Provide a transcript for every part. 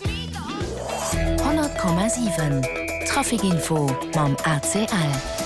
100,7 Trafic Info mam ACL.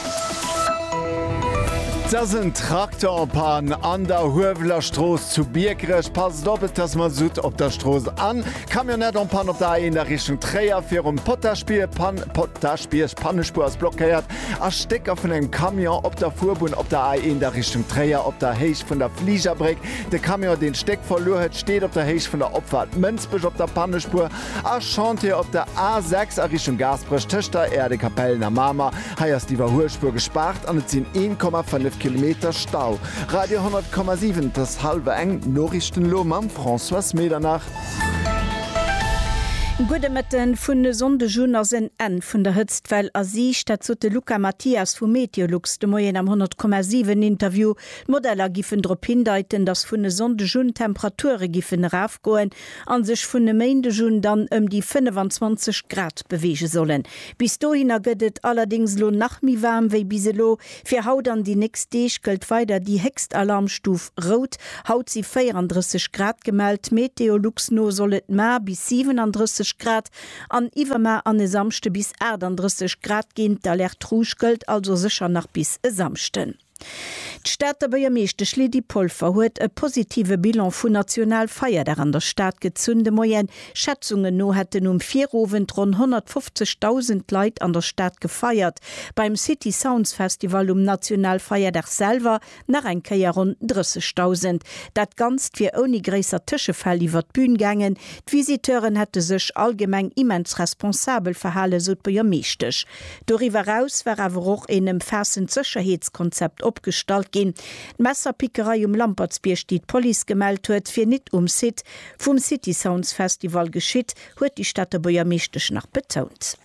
Et ass en Trakter op Pann an der Hueweler Strooss zu Biekerech. Passt op, et ass Masutt op der Strooss. A Camionnette en panne op der A1 a Richtung Tréier virum Potaschbierg. Pann Potaschbierg, d'Pannespuer ass blockéiert a Stécker vun engem Camion op der Fuerbunn op der A1 a Richtung Tréier op der Héicht vun der Fligerbréck. De Camion, deen d'Stéck verluer huet, steet op der Héicht vun der Opfaart Mënsbech op der Pannespuer a Chantier op der A 6 a Richtung Gaasperech tëscht der Aire de Capellen a Mamer. Hei ass d'Iwwerhuelspuer gespaart an et sinn 1,5 Kilometer Stau. Radio 10,7 Et ass hallwer eng, d'Noriichten elo mam Françoise Medernach. Gudde Mëtten. Vun e Sonndeg un ass en Enn vun der Hëtztwell a Siicht. Dat sot de Luca Mathias vu Meteolux de Moien am 10,7 Interview. D'Modeller giffen drop hindeiten, dass vun e Sonndeg un d'Temperature giffen erafgoen a sech vun e Méindeg un dann ëm déi 25 Grad beweege sollen. Bis dohinner gëtt et allerdéngs elo nach méi waarm wéi bis elo. Fir haut an déi nächst Deeg gëllt weider déi héchst Alarmstuf rout. Haut si 34 Grad gemellt. MeteoLux no soll et mar bis 37 Grad an iwwermar an e Samschde bis 38 Grad ginn. D'Alerte rouge gëllt also sécher nach bis e Samschden. D'Stater Buergermeeschtesch Lydie Polfer huet e positive Bilan vun Nationalfeierdag an der Stad gezunn de Moien. Schätzungen no hätten um Virowend ronn 150.000 Leit an der Stad gefeiert, beim City Sounds Festival um Nationalfeierdag selwer nach eng Kéier ronn 30.000. Dat Ganzt wier ouni gréisser Tëschefäll iwwert d'Bün gaangen. D'Visiteuren hätte sech allgemeng immens responsabel verhale, sou d'Buergermeeschtesch. Doriwwer eraus war awer och een ëmfaassend Sécherheetskonzept opgestallt ginn. D'Messerpickerei um Lampertsbierg, déi d'Police gemellt huet, wier nit um Site vum City Sounds Festival geschitt, huet déi Stater Buergermeeschtesch nach betount.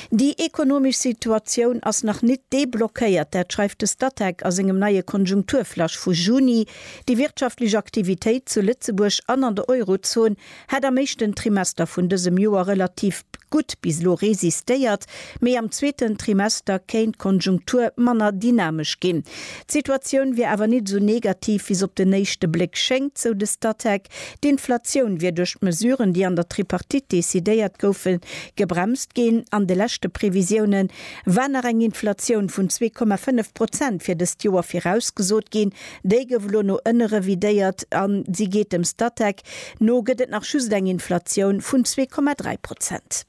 Déi ekonomesch Situatioun ass nach nit deblockéiert, dat schreift de Statec a sengem neie Konjunkturflash vu Juni. Déi wirtschaftlech Aktivitéit zu Lëtzebuerg an an der Eurozon Hätt am éischten Trimester vun dësem Joer relativ gutt bis elo resistéiert, mee am zweeten Trimester kéint d'Konjunktur manner dynamesch ginn. D'Situatioun wier awer nit esou negativ, wéi se op den éischte Bléck schéngt, sou de Statec. D'Inflatioun wier duerch d'Mesuren, déi an der Tripartite decidéiert goufe, gebremst ginn. An de leschte Previsioune war nach eng Inflatioun vun zwee Komma fënnef Prozent fir dëst Joer virausgesot ginn. Déi gouf elo no ënne revidéiert a si geet dem Statec No gëtt et nach just eng Inflatioun vun zwee Komma dräi Prozent.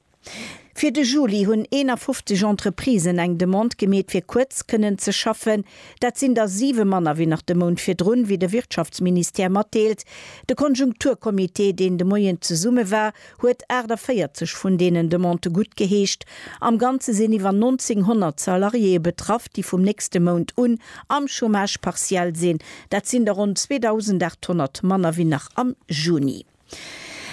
Fir de Juli hunn 51 Entreprisen eng Demande gemeet fir kuerz kënnen ze schaffen. Dat sinn der siwe manner wéi nach de Mount virdrun, wéi de Wirtschaftsministère matdeelt. De Konjunkturcomité, deen de Moien zesumme war, huet 48 vun deenen Demandë guttgeheescht. Am Ganze sinn iwwer 1.900 Salariéeë betraff, déi vum nächste Mount un am Chômage partiel sinn. Dat sinn der ronn 2.800 manner wéi nach am Juni.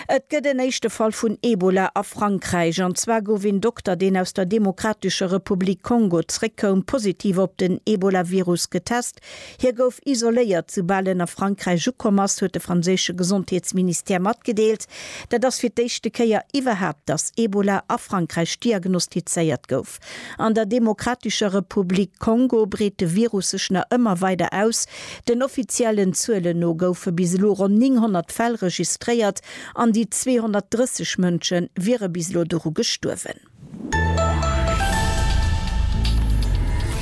Et gëtt en éischte Fall vun Ebola a Frankräich. An zwar gouf een Dokter, deen aus der Demokratescher Republik Kongo zréckkoum, positiv op den Ebolavirus getest. Hie gouf isoléiert, soubal en a Frankräich ukomm ass, huet de franséische Gesondheetsministère matgedeelt. Dat ass fir d'éischte Kéier iwwerhaapt, datt Ebola a Frankräich diagnostizéiert gouf. An der Demokratescher Republik Kongo breet de Virus sech nach ëmmer weider aus. Den offiziellen Zuelen no goufe bis elo ronn 900 Fäll registréiert an déi 230 Mënsche wiere bis elo doru gestuerwen.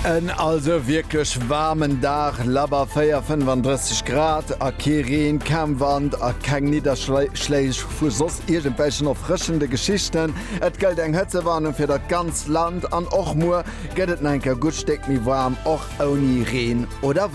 En also wierklech waarmen Dag, labber 4, 35 Grad a kee Reen, kaum Wand a keng Nidderschléich vu soss iergendwelchen erfrëschende Geschichten. Et gëllt eng Hëtzewarnung fir dat ganzt Land an och muer gëtt et nach eng Kéier gutt Stéck méi waarm, och ouni Reen oder Wand.